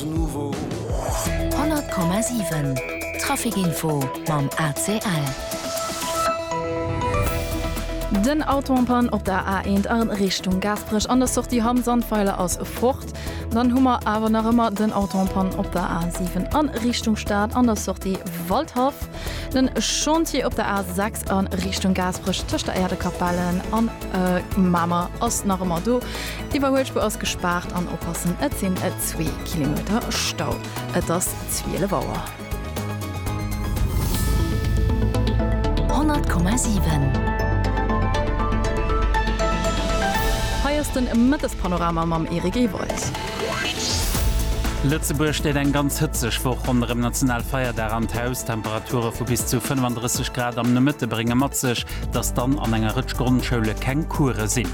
100,7 Trafikinfo mam ACL. Den Auto en panne op der A1 a Richtung Gaasperech an der Sortie Hamm Sandweiler ass fort. Dann hu mer awer nach ëmmer den Auto en panne op der A7 a Richtung Stad an der Sortie Waldhaff. Den Chantier op der A6 a Richtung Gaasperech tëscht der Äerdekapellen an Mamer ass nach ëmmer do. D'Iwwerhuelspur ass gespaart an oppassen, et sinn et zwee Kilometer Stau. Et ass 12 Auer. 100,7. Hei ass den Mëttespanorama mam Eric Ewald. Lëtzebuerg steet eng ganz hëtzeg Woch ronderëm National Feierdag an d'Haus. Temperature vu bis zu 35 Grad am Nomëtte brénge mat sech, dass dann an enger Rëtsch Grondschoule keng Coure sinn.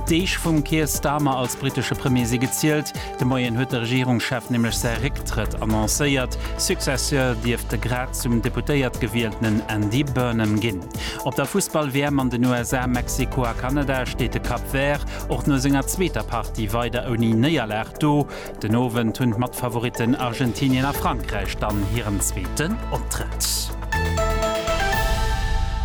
D'Deeg vum Keir Starmer als brittesche Premier si gezielt. De Moien huet de Regierungschef nämlech säi Récktrëtt annoncéiert. Successeur dierft de grad zum Deputéiert gewieltenen Andy Burnham ginn. Op der Fussball-WM an den USA, Mexiko a Kanada steet de Cap Vert och no senger zweeter Partie weider ouni Néierlag do. Den Owend hunn d'Matfavoritten Argentinien a Frankräich dann hiren zweeten Optrëtt.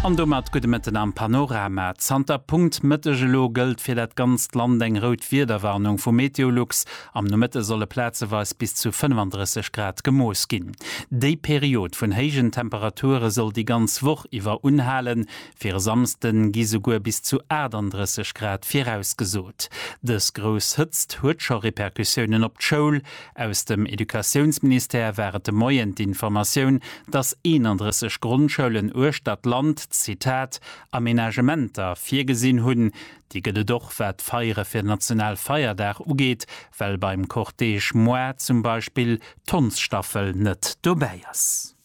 An domat gudde Mëtten am Panorama. Zanter Punkt Mëtteg elo gëllt fir dat ganzt Land eng rout Wiederwarnung vu Meteolux. Am Nomëtte solle plazeweis bis zu 35 Grad gemooss ginn. Déi Period vun héijen Temperature soll déi ganz Woch iwwer unhalen, Fir e Samsden gi souguer bis zu 38 Grad virausgesot. Dës grouss Hëtzt huet scho Repercussiounen op d'Schoul. Aus dem Educatiounsministère war et de Moien d'Informatioun, dass 31 Grondschoulen uechter d'Land, Zitat, Amenagementer virgesinn hunn. Déi gëtt et och wat d'Feiere fir national Feierdag ugeet, well beim Cortège Moi zum Beispill d'Hondsstaffel net dobäi ass.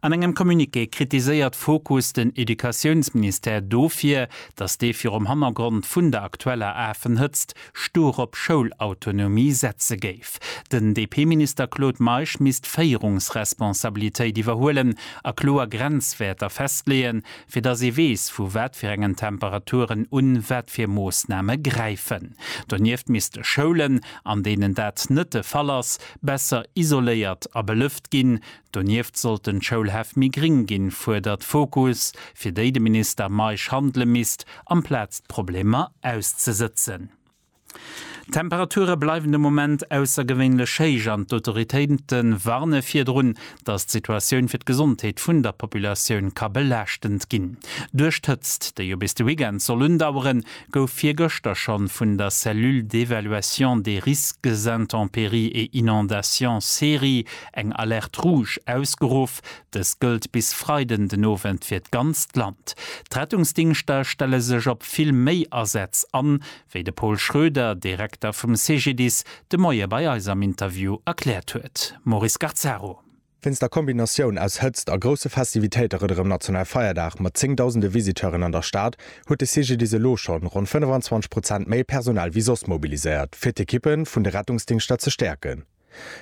An engem Communiqué kritiséiert Fokus den Educatiounsministère dofir, datt dee virum Hannergrond vun der aktueller Afenhëtzt stur op Schoulautonomie setze géif. Den DP-Minister Claude Meisch misst Féierungsresponsabilitéit iwwerhuelen a kloer Grenzwäerter festleeën, fir datt ee weess, vu wat fir engen Temperaturen un wat fir Moossname gräifen. Donieft misste Schoulen, an deenen dat net de Fall ass, Besser isoléiert a belëft ginn. Donieft sollten d'Schoulhäff méi gring ginn, fuerdert Fokus, fir déi de Minister Meisch handele misst, amplaz d'Problemer auszesëtzen. D'Temperature bleiwen de Moment aussergewéinlech héich an d'Autoritéite warne virdrun, datt d'Situatioun fir d'Gesondheet vun der Populatioun ka belaaschtend ginn. Duerch d'Hëtzt, déi jo bis de Weekend soll undaueren, gouf virgëschter schonn vun der Cellule d'évaluation des risques intempéries et inondations, CERI, eng Alerte rouge ausgeruff. Dës gëllt bis Freiden den Owend fir d'ganzt Land. D'Rettungsdingschter stelle sech op vill méi Asätz an, wéi de Pol Schroeder, Direkter vum CGDIS, de Moie bei eis am Interview erkläert huet. Maurice Gazzaro. Wéinst der Kombinatioun aus Hëtzt a grousse Festivitéite rënderëm National Feierdag mat zéngdausende Visiteuren an der Stad, huet de CGDIS elo schonn ronn 25 Prozent méi Personal wéi soss mobiliséiert, fir d'Ekippe vun de Rettungsdingschter ze stäerken.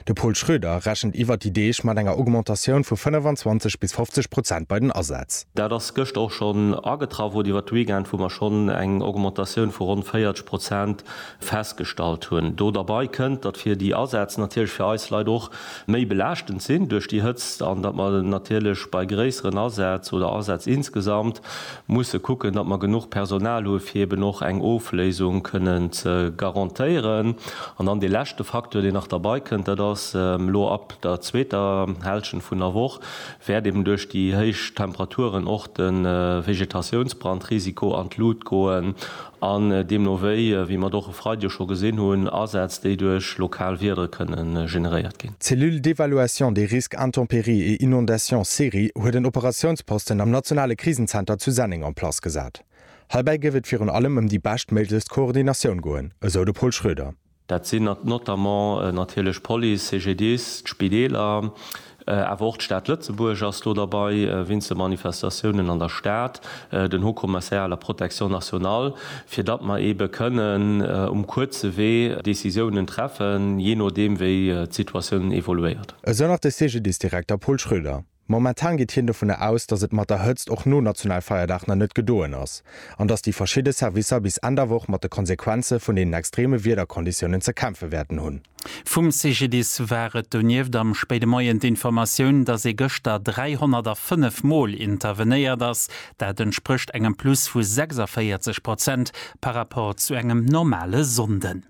De Pol Schröder rechent iwwert déi Deeg mat enger Augmentatioun vu 25 bis 50 Prozent bei den Asätz. Dat ass gëscht och schonn agetraff, oder iwwert de Weekend, wou mer schonn eng Augmentatioun vu ronn 40 Prozent festgestallt hunn. Do derbei kënnt, datt fir déi Asätz natierlech fir eis Leit och méi belaaschtend sinn duerch déi Hëtzt an datt mer natierlech bei gréisseren Asätz oder Asätz insgesamt musse kucken, datt mer genuch Personal hu fir eben och eng Ofléisung kënnen ze garantéieren. An dann dee leschte Facteur, deen nach derbei kënnt, dat ass elo ab der zweeter Hälschent vun der Woch wäert eben duerch déi héich Temperaturen och de Vegetatiounsbrandrisiko an d'Lut goen. An deemno wéi, wéi mer et och e Freideg scho gesinn hunn, Asätz, déi duerch lokal Wieder kënne generéiert ginn. D'Cellule d'évaluation des risques intempéries et inondations, CERI, huet en Operatiounsposten am nationale Krisenzenter zu Senneng en place gesat. Heibäi géif et virun allem ëm déi beschtméiglechst Koordinatioun goen, esou de Pol Schröder. Dat sinn notamment natierlech d'Police, CGDIS, d'Spideeler, awer och d'Stad Lëtzebuerg ass do derbei, weinst de Manifestatiounen an der Stad, den Haut Commissariat à la protection nationale, fir datt mer eebe kënnen um kuerze Wee Decisiounen treffen, jee nodeem wéi d'Situatioun evoluéiert. Esou nach de CGDIS-Direkter Paul Schröder. Momentan geet hien dovunner aus, datt et mat der Hëtzt och no Nationalfeierdag nach net gedoen ass, an datt déi verschidde Servicer bis Enn der Woch mat de Konsequenze vun deenen extreme Wiederkonditiounen ze kämpfe wäerten hunn. Vum CGDIS war et donieft am spéide Moien d'Informatioun, datt ee gëschter 305 Mol intervenéiert ass. Dat entsprécht engem Plus vu 46 Prozent par Rapport zu engem normale Sonnden.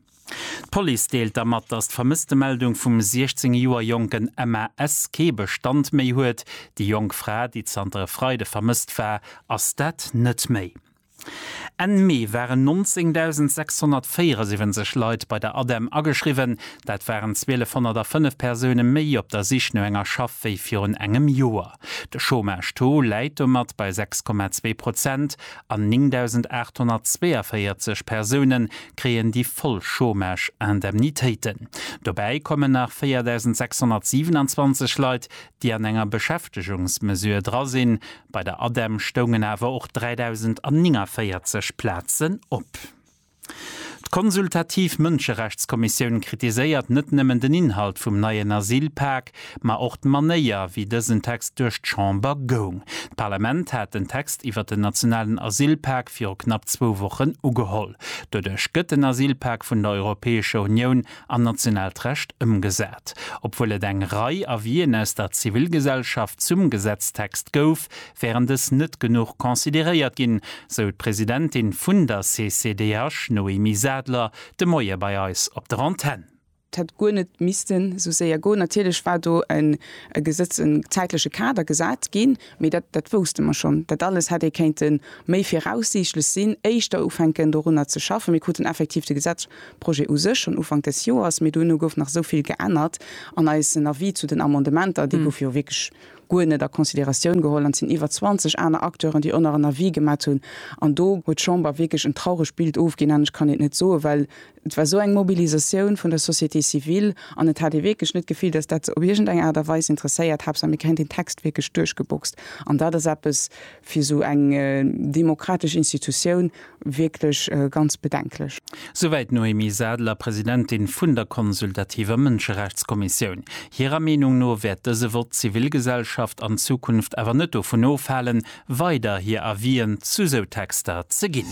D'Police deelt da mat, datt d'Vermësstemeldung vum 16 Joer jonken Emma S. kee Bestand méi huet. Déi jonk Fra, déi zanter e Freide vermësst war, ass dat net méi. Enn Mee waren 19.674 Leit bei der ADEM ageschriwwen. Dat waren 1.205 Persoune méi op der Sich no enger Schaff wéi virun engem Joer. De Chômage-Taux läit domat bei 6,2 Prozent an 9.842 Persoune kréien déi voll Chômage-Indemnitéiten. Dobäi kommen nach 4.627 Leit, déi an enger Beschäftegungsmesure dra sinn. Bei der ADEM stoungen awer och 3.049 Plazen op. D'Konsultativ Mënscherechtskommissioun kritiséiert net nëmmen den Inhalt vum neien Asylpak, ma och d'Manéier, wéi dësen Text duerch d'Chamber goung. D'Parlament hat den Text iwwert den nationalen Asylpak viru knapp zwou Wochen ugeholl. Doduerch gëtt den Asylpak vun der Europäescher Unioun an nationaalt Recht ëmgesat. Obwuel et eng Rei Avien aus der Zivilgesellschaft zum Gesetztext gouf, wären dës net genuch consideréiert ginn, sou d'Presidentin vun der CCDH Noémie Sadler de Moie bei eis op der Antenn. Et hätt guer net missten esou séier goen. Natierlech war do e Gesetz, e zäitleche Kader gesat ginn, mee dat, dat wousste mer schonn. Dat alles hätt ee kéinte méi viraussiichtlech sinn, éischter ufänken dorunner ze schaffen. Mir kruten effektiv de Gesetzprojet u sech schonn Ufank des Joers, mee duerno gouf nach esou vill geännert an eisen Avis zu den Amendementer, dee gouf jo wierklech, guer net a Considératioun geholl an et sinn iwwer 20 aner Acteuren, déi oner en Avis gemat hunn an do huet d'Chamber wierklech en trauregt Bild ofginn an ech kann et net soen, well et war esou eng Mobilisatioun vun der Société civile an et hat ee wierklech net d'Gefill, dass dat se op iergendeng Aart a Weis interesséiert. Haaptsaach mir kréien deen Text wierklech duerchgeboxt an dat ass eppes fir esou eng demokratesch Institutioun, wierklech ganz bedenklech. Souwäit d'Noémie Sadler, Presidentin vun der consultativer Mënscherechtskommissioun. Hirer Meenung no wäert dëse Vott d'Zivilgesellschaft an Zukunft awer net dovun ofhalen, weider hir Avisen zu sou Texter ze ginn.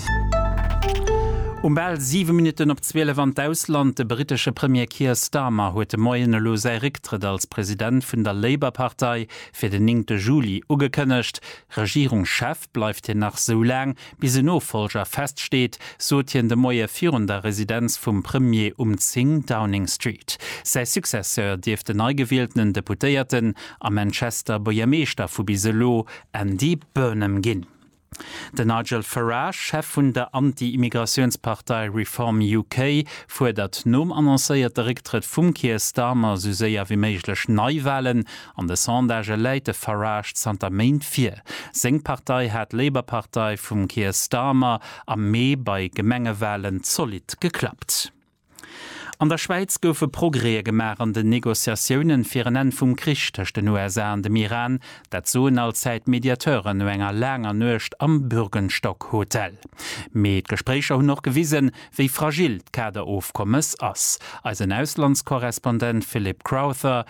Um bal siwe Minutten op zwielef an d'Ausland, De britesche Premier Keir Starmer huet de Moien elo säi Récktrëtt als President vun der Labour-Partei fir den 9 Juli ugekënnegt. Regierungschef bleift hien nach sou laang, Bis en Nofollger feststeet, sot hien de Moie virun der Residenz vum Premier um 10 Downing Street. Säi Successeur dierft den neigewieltenen Deputéierten a Manchester Buergermeeschter vu bis elo, Andy Burnham ginn. Den Nigel Farage, Chef vun der Anti-Immigratiounspartei Reform UK, fuerdert nom annoncéierte Récktrëtt vum Keir Starmer sou séier wéi méiglech Neiwalen An de Sondagë läit de Farage zanter Méint vir. Seng Partei hat d'Labour-Partei vum Keir Starmer am Mee bei Gemengewalen zolidd geklappt. An der Schwäiz goufe Progrèë gemaach an den Negociatiounen fir en Enn vum Krich tëscht den USA an dem Iran. Dat soen allzäit d'Mediateuren no enger laanger Nuecht am Bürgenstock Hotel. Mee d'Gespréicher hunn och gewisen, wéi fragil d'Kaderofkommes ass. Eisen Auslandskorrespondent Philip Crowther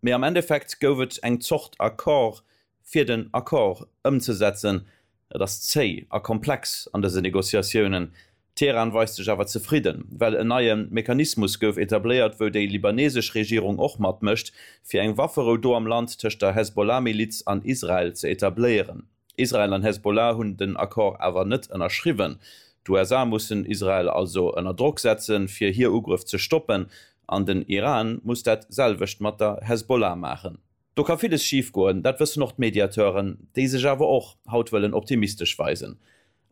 Mee am Endeffekt gouf et eng Zort Accord, fir den Accord ëmzesetzen. Et ass zéi a komplex an dëse Negociatiounen. Teheran weist sech awer zefridden, well en neie Mechanismus gouf etabléiert, wou déi libanesesch Regierung och matmécht, fir eng Wafferou do am Land tëscht der Hezbollah-Miliz an Israel ze etabléieren. Israel an Hezbollah hunn den Accord awer net ënnerschriwwen. D'USA mussen Israel also ënner Drock setzen, fir hir Ugrëff ze stoppen, an den Iran muss dat selwecht mat der Hezbollah maachen. Do ka villes schif goen, dat wëssen och d'Mediateuren, déi sech awer och haut wëllen optimistesch weisen.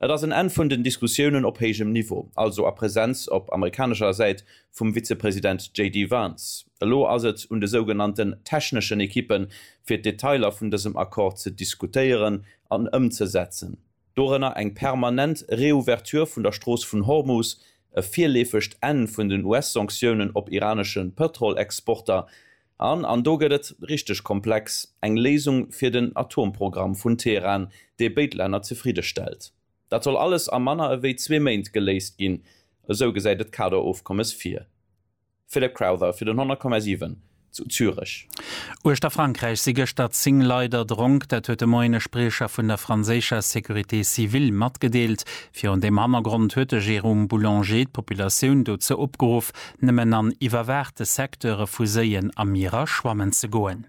Et ass en Enn vun den Diskussiounen op héijem Niveau, also a Präsenz op amerikanescher Säit vum Vizepresident JD Vance. Elo ass et un de sougenannten techneschen Ekippen, fir d'Detailer vun dësem Accord ze diskutéieren an ëmzesetzen, dorënner eng permanent Reouverture vun der Strooss vun Hormus, e virleefegt Enn vun den US-Sanktiounen op iranesche Pëtrolexporter, An, an do gëtt et richteg komplex, eng Léisung fir den Atomprogramm vun Teheran, dee béid Länner zefridde stellt. Dat soll alles a manner ewéi zwee Méint geléist ginn, esou gesäit et d'Kaderofkommes vir. Philip Crowther fir den 100,7 zu Zürech. Uechter Frankräich si gëschter 10 Leit erdronk. Dat huet de Moien e Spriecher vun der franséischer Sécurité civile matgedeelt. Virun deem Hannergrond huet de Jérôme Boulanger d'Populatioun dozou opgeruff, nëmmen an iwwerwaachte Secteure vu Séien a Mierer schwammen ze goen.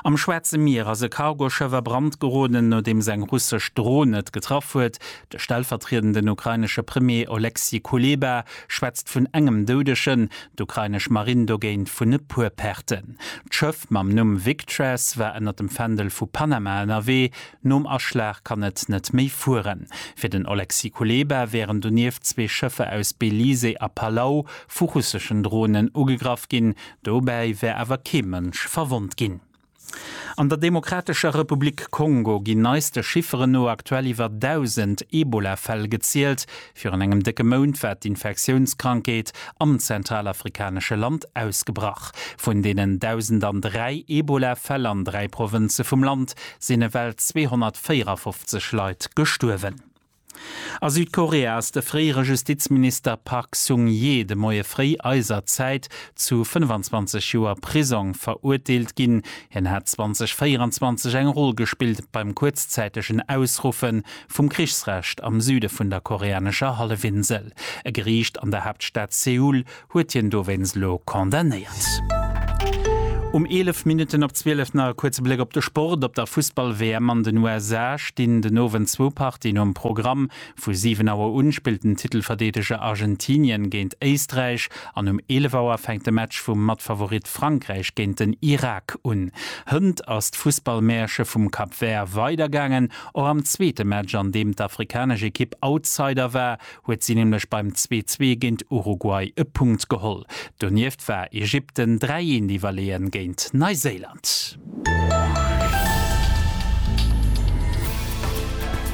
Am Schwaarze Mier ass e Cargoschëff a Brand geroden, nodeems eng russesch Dron et getraff huet. De stellvertriedenden ukrainesche Premier Oleksii Kuleba schwätzt vun engem Doudegen, d'ukrainesch Marinn dogéint vun e puer Perten. D'Schëff mam Numm Victress war ënner dem Fändel vu Panama ënnerwee. Nom Aschlag kann et net méi fueren. Fir den Oleksii Kuleba wären donieft zwee Schëffer aus Belize a Palau vu russeschen Dronen ugegraff ginn. Dobäi wär awer kee Mënsch verwonnt ginn. An der Demokratescher Republik Kongo ginn neiste Chifferen no aktuell iwwer 1.000 Ebola-Fäll gezielt, Virun engem décke Mount war d'Infektiounskrankheet am zentralafrikanesche Land ausgebrach. Vun deenen 1.003 Ebola-Fäll an dräi Provënze vum Land sinn ewell 254 Leit gestuerwen. A Südkorea ass de fréiere Justizminister Park Sung-hye de Moie fréi eiser Zäit zu 25 Joer Prisong verurteelt ginn. Hien hat 2024 eng Roll gespillt beim kuerzzäitegen Ausruffe vum Krichsrecht am Süde vun der koreanescher Hallefinsel. E Geriicht an der Haaptstad Seoul huet hien dowéinst elo condamnéiert. Um 11 Minutten op 12 nach e kuerze Bléck op de Sport. Op der Fussball-WM an den USA stinn den Owend zwou Partien um Programm. Vu 7 Auer un spillt den Titelverdeedeger Argentinien géint Éisträich an um 11 Auer fänkt de Match vum Matfavorit Frankräich géint den Irak un. Hënt ass d'Fussball-Mäerche vum Cap Vert weidergaangen. Och am zweete Match, an deem d'afrikanesch Ekipp Outsider war, huet si nämlech beim 'Zwee-Zwee' géint Uruguay e Punkt geholl. Donieft war Ägypten 3 Eent iwwerleeën géint Neiséiland.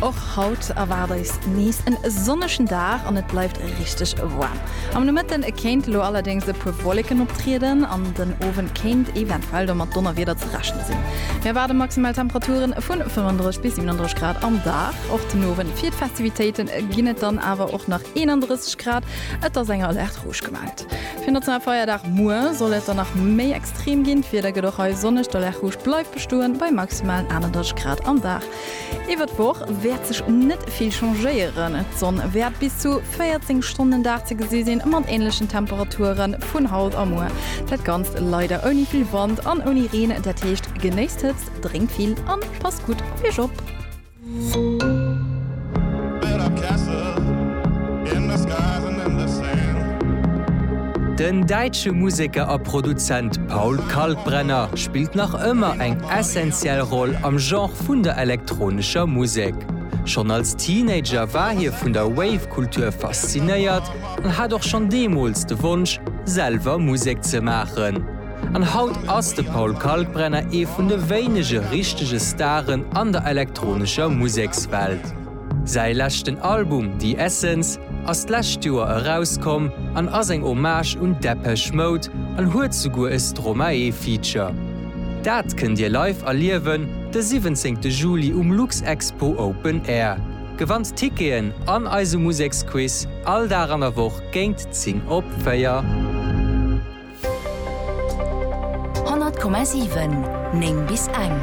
Och haut erwaart eis nees en sonnegen Dag an et bleift richteg waarm. Am Nomëtte kéint elo allerdéngs e puer Wolleken optrieden an den Owend kéint eventuell domat Donnerwieder rechne sinn. Mir erwaarde maximal Temperature vu 35 bis 37 Grad am Dag. Och den Owend fir d'Festivitéite ginn et dann awer och nach 31 Grad. Et ass eng Alerte rouge gemellt. Fir Nationale Feierdag muer soll et dann nach méi extrem ginn. D'Wieder gëtt och hei sonneg, d'Alerte rouge bleift bestoen bei maximalen 31 Grad am Dag. Iwwer d'Woch wäert sech net vill changéieren, d'Sonn wäert bis zu 14 Stonnen den Dag ze gesi sinn, mat änlechen Temperature vun haut a muer. Dat Ganzt leider ouni vill Wand an ouni Reen, dat heescht, genéisst d'Hëtzt, drénkt vill a passt gutt op iech op. Den däitsche Museker a Produzent Paul Kalkbrenner spillt nach ëmmer eng essentiell Roll am Genre vun der elektronescher Musek. Schonn als Teenager war hie vun der Wave-Kultur faszinéiert an hat och schonn deemools de Wonsch, selwer Musek ze maachen. An haut ass de Paul Kalkbrenner ee vun de wéinege richtege Staren an der elektronescher Musekswelt. Säi leschten Album The Essence ass d'lescht Joer erauskomm an ass eng Hommage un Depeche Mode an huet souguer e Stromae-Feature. Dat kënnt Dir live erliewen de 17 Juli um Luxexpo Open Air. Gewannt Ticketen an eise Museksquiz all Dag an der Woch géint 10 op 4. 100,7 9 bis eng.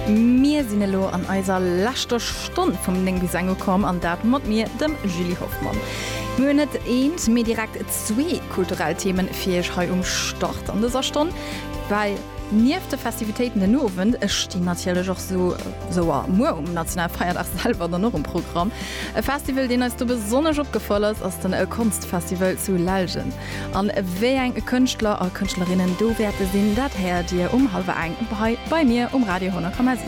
Mir sinn elo an eiser leschter Stonn vum 9 bis eng ukomm, an dat mat mir, dem Julie Hoffmann. Mir hunn net eent, mee direkt zwee kulturell Themen fir Iech hei um Start an dëser Stonn, well nieft de Festivitéiten den Owend stinn natierlech och esou, Esou a muer um Nationalfeierdag selwer dann och um Programm. E Festival, deen eis do besonnesch opgefall ass, ass den Konstfestival zu Lellgen. An wéi eng Kënschtler a Kënschtlerinnen do wäerte sinn, dat héiert Dir um hallwer eng hei bei mir um Radio 10,7.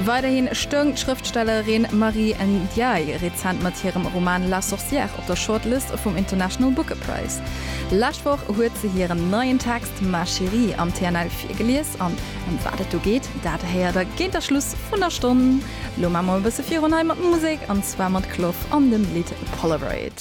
Weiderhi stoung d'Schrëftstellerin Marie Ndiaye rezent mat hirem Roman La Sorcière op der Shortlist vum International Booker Prize. Lescht Woch huet se hiren neien Text Ma Chérie am TNL virgelies an Ëm wat et do geet, dat héiert der géint der Schluss vun der Stonn. Lo maache mer e bësse virun hei mat Musek, an zwar mat Clof an dem Lidd Polaroid.